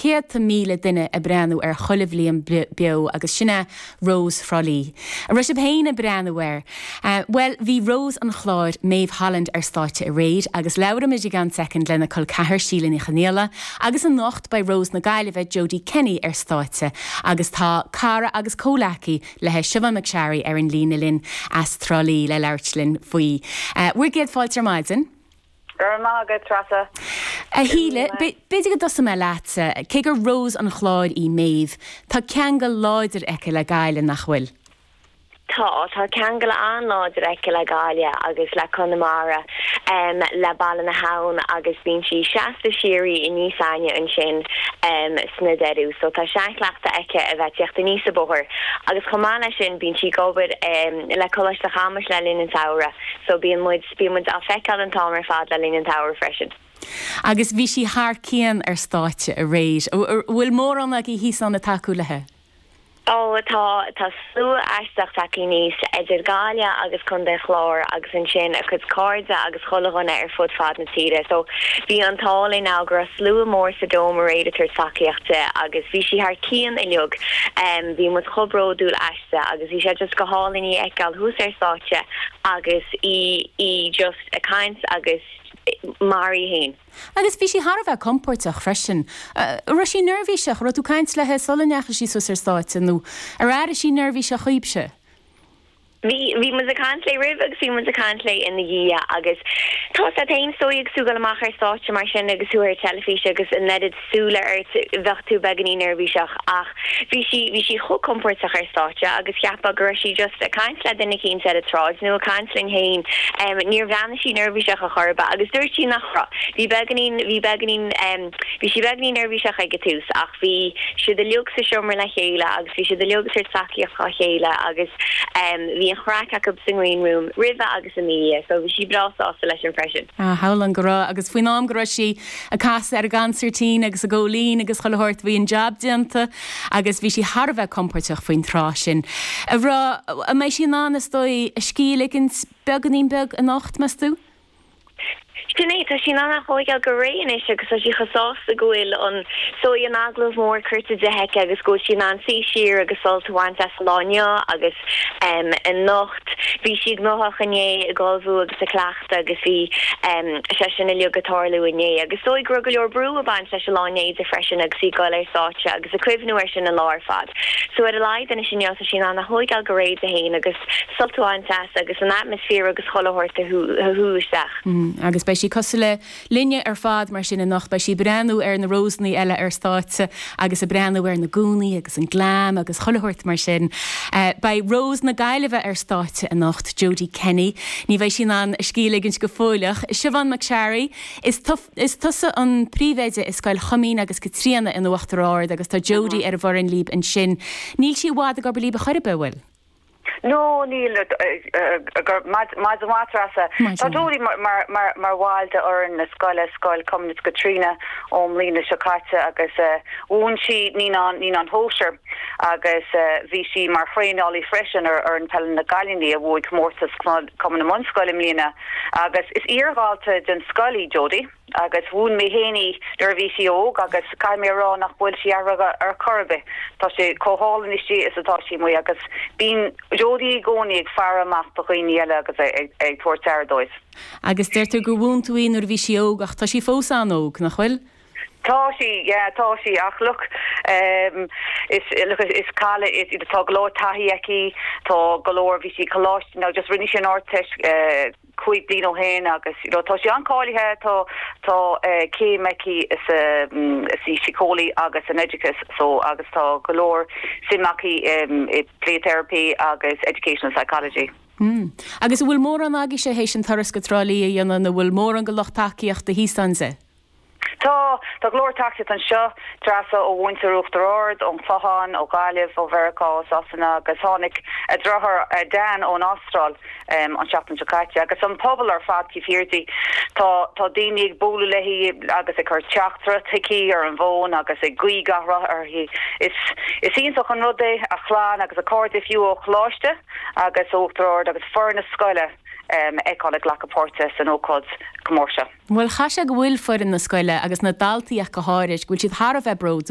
céadta míle duine ag breathnú air chuile bhliain beo agus sin é Rós Thrá Lí. An raibh sibh féin ag breathnú air? Bhuel, bhí Rós an Chláir, Maeve Holland ar stáitse aréir agus labhróidh muid i gceann soicind lena col ceathar Síle Ní Chonaola agus anocht beidh Rós na Gaillimhe, Jodie Kenny ar stáitse agus tá cara agus comhleacaí leithe Siobhán McSharry ar an líne linn as Trá Lí le labhairt linn faoi. Bhur gcéad fáilte ar maidin. Go raibh maith agat, Treasa. A Shíle, b'fhéidir go dtosóidh mé leat. Cé gur Rós an Chláir í Méabh, tá ceangal láidir aici le Gaillimh, nach bhfuil? Tá. Tá ceangal an-láidir aici le Gaillimh agus le Conamara, le Baile na hAbhann agus bíonn sí seasta síoraí aníos againn ansin sna deireadh so tá seanchleachtadh aici a bheith ag tíocht aníos an bóthar agus chomh maith leis sin bíonn sí ag obair le Coláiste Chamuis le linn an tsamhraidh so bíonn muid Bhí muid á feiceáil an t-am ar fad le linn an tsamhraidh freisin. Agus bhí sí thar cionn ar stáitse aréir. An bhfuil mórán agaibh thíos ann ag tacú leithe? Ó tá, tá slua aisteach tagthaí aníos, idir Gaillimh agus Contae an Chláir agus ansin a cuid cairde agus chuile dhuine ar fud fad na tíre. So bhí an t-ádh linn ann go raibh slua mór sa Dome aréir ag tabhairt tacaíocht di agus bhí sí thar cionn uilig. Bhí muid chomh bródúil aisti. Sea, agus bhí sé just go hálainn í a fheiceáil thuas ar stáitse agus í, í just ag caint agus mar í fhéin. Agus bhí sí thar a bheith compóirteach freisin. Raibh sí neirbhíseach, raibh tú ag caint leithe sula ndeachaigh sí suas ar stáitse nó ar airigh sí neirbhíseach dhaoibhse? Bhí, bhí muid ag caint léi roimhe agus bhí muid ag caint léi ina dhiaidh agus tá, tá, tá is dóigh agus tú ag goil amach ar stáitse mar sin agus thú ar teilifís agus an oiread súile ort, bheadh tú beagainín neirbhíseach ach bhí sí, bhí sí chomh compóirteach ar stáitse agus cheapfá go raibh sí just ag caint le duine eicínt ar an tsráid nó ag caint linn fhéin, em níor bhreathnaigh sí neirbhíseach a chor ar bith agus dúirt sí nach raibh, bhí beagainín, bhí beagainín em bhí sí beagainín neirbhíseach ag an tús ach bhí siad uilig sa seomra le chéile agus bhí siad uilig ag tabhairt tacaíocht dhá chéile agus em bhí an-chraic acub sa ngreen room roimhe agus ina dhiaidh so bhí sí breá sásta leis sin freisin. Ah, shamhlóinn go raibh agus faoin am go raibh sí, ag casadh ar an gconsairtín agus ag gabháil fhoinn agus chuile shórt. Bhí an jab déanta agus bhí sí thar a bheith compóirteach faoin tráth sin a rá, bhuel, an mbeidh sí in ann, is dóigh, a scíth a ligint beagáinín beag anocht, meas tú? Sin é, tá sí in ann a thóigeáil go réidh anois agus tá sí chomh sásta go bhfuil an, is dóigh, an agallamh mór curtha di aici agus go bhfuil sí in ann suí siar agus sult a bhaint as an lá inniu agus anocht. Bhí sí gnóthach inné, ag ullmhú agus ag cleachtadh. agus bhí sé sin uilig ag tarlú inné, agus is dóigh go raibh go leor brú ag baint leis an lá inné di freisin agus í ag goil ar stáitse agus ag cuimhniú air sin an lá ar fad. So ar a laghad anois inniu tá sí in ann a thóigeáil go réidh di féin agus sult a bhaint as agus an atmaisféar agus chuile shórt a shú isteach. Agus beidh sí cosúil le linne ar fad mar sin anocht. Beidh sí ag breathnú ar na Rósanna eile ar stáitse agus ag breathnú ar na gúnaí agus an glam agus chuile shórt mar sin. Beidh Rose na Gaillimhe ar stáitse anocht, Jodie Kenny. Ní bheidh sí in ann a scíth a ligint go fóill ach, Siobhán McSharry, is tu, is tusa an príomhoide i Scoil Chuimín agus Caitríona in Uachtar Ard agus tá Jodie ar an bhfoireann libh ansin. Níl sí i bhfad ag obair libh ar chor ar bith, an bhfuil? No, níl, go raibh maith agat a Threasa. Tá Jodie mar bhall d'fhoireann na scoile, Scoil Chuimín agus Caitríona, ón mbliana seo caite agus mhúin sí Naíonáin Shóisearacha agus bhí sí mar thraenálaí freisin ar fhoireann peile na gcailíní a bhuaigh comórtas Cumann na mBunscoil i mbliana agus is iar-dhalta den scoil í Jodie. agus mhúin mé féin í nuair a bhí sí óg agus caithfidh mé a rá nach bhfuil sí athraithe ar chor ar bith, tá sí chomh hálainn istigh is atá sí amuigh agus bíonn Jodie i gcónaí ag faire amach do dhaoine eile agus ag tabhairt aire dóibh. Agus deir tú gur mhúin tú í nuair a bhí sí óg ach tá sí fós an-óg, nach bhfuil? Tá sí, yeah, tá sí ach look, em, is, look, is cailín í, tá go leor taithí aici, tá go leor, bhí sí ag coláiste, now just rinne sí an Ardteist, eh, cúig bliain ó shin agus tá sí an-cháilithe. Tá céim aici sa Síceolaíocht agus in Oideachas so agus tá go leor suim aici i Play Therapy agus Educational Psychology. Mm. Agus an bhfuil mórán agaibhse théis an turas go Trá Lí a dhéanamh nó an bhfuil mórán de lucht tacaíochta thíos ann di? Tá. Tá go leor tacaíocht anseo, a Threasa, ó mhuintir Uachtar Ard, ón Chlochán, ó Ghaillimh, ó Mheiriceá, ó Sasana agus tháinig a deartháir Dan ón Astráil an tseachtain seo caite. Agus an pobal ar fad taobh thiar di. Tá tá daoine ag bualadh léi agus ag cur teachtaireacht chuici ar an bhfón agus ag guí gach rath uirthi. Is is iontach an rud é, a clann agus a cairde fiú ó Choláiste agus ó Uachtar Ard agus foireann na scoile a fheiceáil ag glacadh páirte san ócáid chomh mór seo. Bhuel, caithfidh sé go bhfuil foireann na scoile, agus na daltaí ach go háirid, go bhfuil siad thar a bheith bródúil.